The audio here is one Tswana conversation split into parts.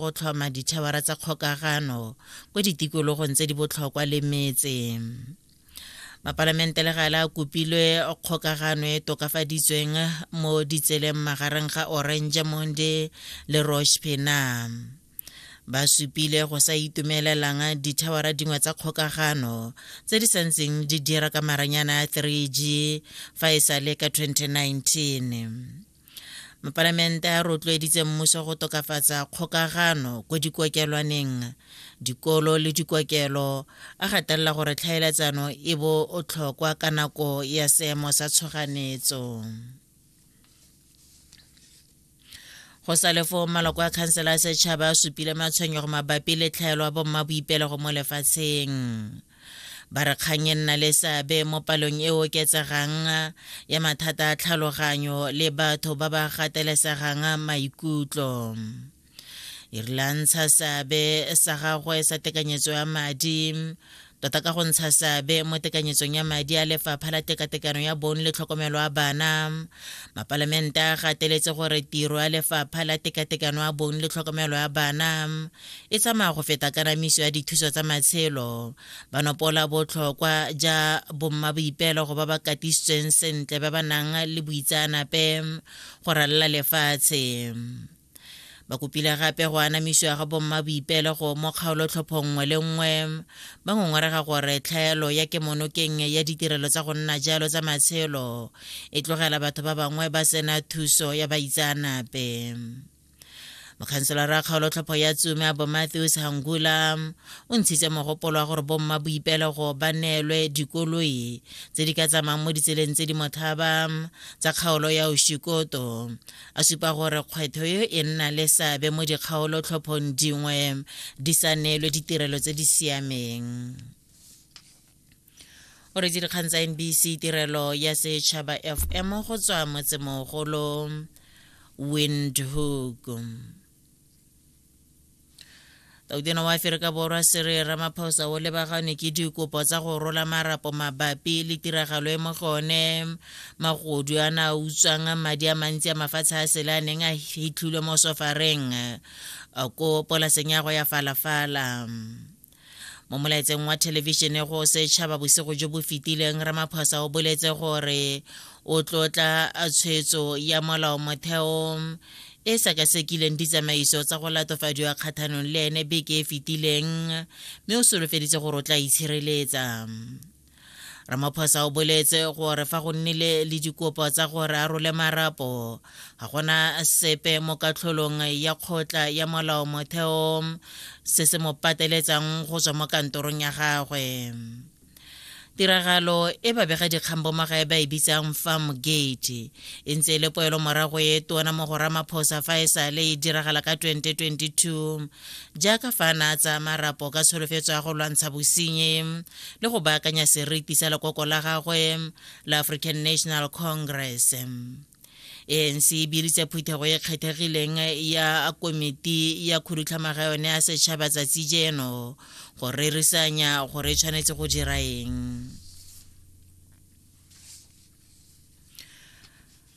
go tlhoma dithabara tsa kgokagano kwa ditikologong tse di botlhokwa le metse mapalamente le gale a kopilwe kgokagano e tokafaditsweng mo ditseleng magareng ga orange monde le rosh penam ba supile go sa itumelelang dithawara dingwe tsa kgokagano tse di santseng di dira ka maranyana a 3g fa e sa le ka 2019 mopalamente a rotloeditse mmuso go tokafatsa kgokagano ko dikokelwaneng dikolo le dikokelo a gatelela gore tlhaeletsano e bo o tlhokwa ka nako ya seemo sa tshoganetso go sa le foo maloko a khansela ya setšhaba a supile matshwenyego mabapi le tlhaelo ya bommaboipelego mo lefatsheng ba re kgang e nna le seabe mo palong e oketsegang ya mathata a tlhaloganyo le batho ba ba gatelesegang maikutlo e rile a ntsha seabe sa gagwe sa tekanyetso ya madi tota ka go ntsha seabe mo tekanyetsong ya madi a lefapha la tekatekano ya bong le tlhokomelo a bana mapalamente a gateletse gore tiro ya lefapha la tekatekano ya bong le tlhokomelo ya bana e tsamaya go feta kanamiso ya dithuso tsa matshelo ba nopola botlhokwa ja bomma boipeelego ba ba katisitsweng sentle ba ba nang le boitsaanape go ralala lefatshe ba kopile gape go anamisiwa ga bomma boipeelego mo kgaolotlhopho nngwe le nngwe ba ngongorega gore tlhaelo ya kemonokeng ya ditirelo tsa go nna jalo tsa matshelo e tlogela batho ba bangwe ba sena thuso ya baitsaanape mokhanselara kgaolotlhopho ya tsume bo matthews hangula o ntshitse mogopolo wa gore bomma boipelego ba neelwe dikoloi tse di ka tsamayng mo ditseleng tse di motlhaba tsa kgaolo ya oshikoto a supa gore kgwetho yo e nna le seabe mo dikgaolotlhophong dingwe di sa neelwe ditirelo tse di siameng o re dikgang tsa nbc tirelo ya setšhaba fm go tswa motsemogolo windhoek tautena wa aferika borwa sere ramaphosa o lebaganwe ke dikopo tsa go rola marapo mabapi le tiragalo e mo go one magodu a na utswang madi a mantsi a mafatshe a sele a neng a hitlhilwe mo sofareng ko polaseng ya go ya falafala mo molaetseng wa thelebišene go setšhaba bosigo jo bo fetileng ramaphosa o boletse gore o tlotla tshwetso ya molao motheo e sekasekileng ditsamaiso tsa go latofadiwa kgathanong le ene beke e fetileng mme o solofeditse gore o tla itshireletsa ramaphosa o boletse gore fa go nnile le dikopo tsa gore a role marapo ga gona sepe mo katlholong ya kgotla ya molao motheo se se mo pateletsang go tswa mo kantorong ya gagwe tiragalo e babega dikgang bomagae ba e bitsang farm gate e ntse e le poelo morago e tona mo go ramaphosa fa e sale e diragala ka 2022 jaaka fa na tsa marapo ka tsholofetso ya go lwantsha bosenyi le go baakanya seriti sa lekoko la gagwe la african national congress anc e biditse phuthego e kgethegileng ya komiti ya khudutlhamaga yone ya setšhaba tsatsi jeno go rerisanya gore e tshwanetse go dira eng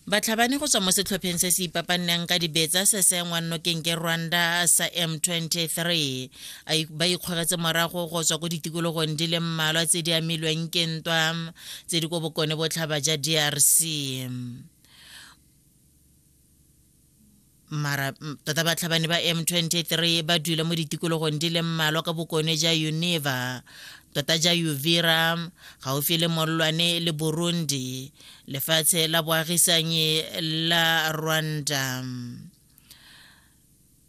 Batlhabani go tswa mo setlhopheng se se ipapanneng ka dibetsa se se engwang nokeng ke Rwanda sa M23 ba ikgogetse morago go tswa ko ditikologong di le mmalwa tse di amilweng ke ntwa tse di ko bokone botlhaba ja DRC. mara tota batlhabani ba m23 ba dula mo ditikologong di le mmalwa ka bokone ja uneva tota ja uvira gaufi le mollwane le burundi lefatshe la boagisanyi la rwanda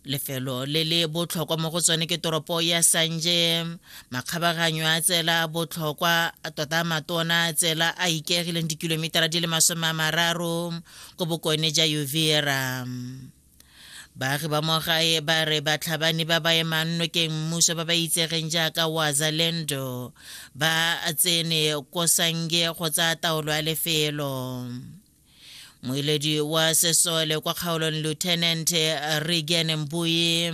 lefelo le le botlhokwa mo go tsone ke toropo ya sanje makgabaganyo a tsela botlhokwa tota matona tsela a ikegileng dikilometara di le masome a mararo ko bokone ja uvira baagi ba mo gae ba re batlhabani ba ba emang nokeng mmuso ba ba itsegeng jaaka wazalendo ba tsene ko sange go tsaya taolo ya lefelo moeledi wa sesole kwa kgaolong lieutenant regen mbui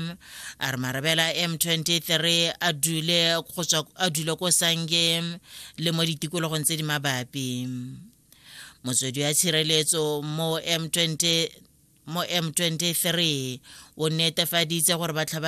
a re marabela m23 a dule ko sange le mo ditikologong tse di mabapi motswedi wa tshireletso mo m23 o netefaditse gore batlhabani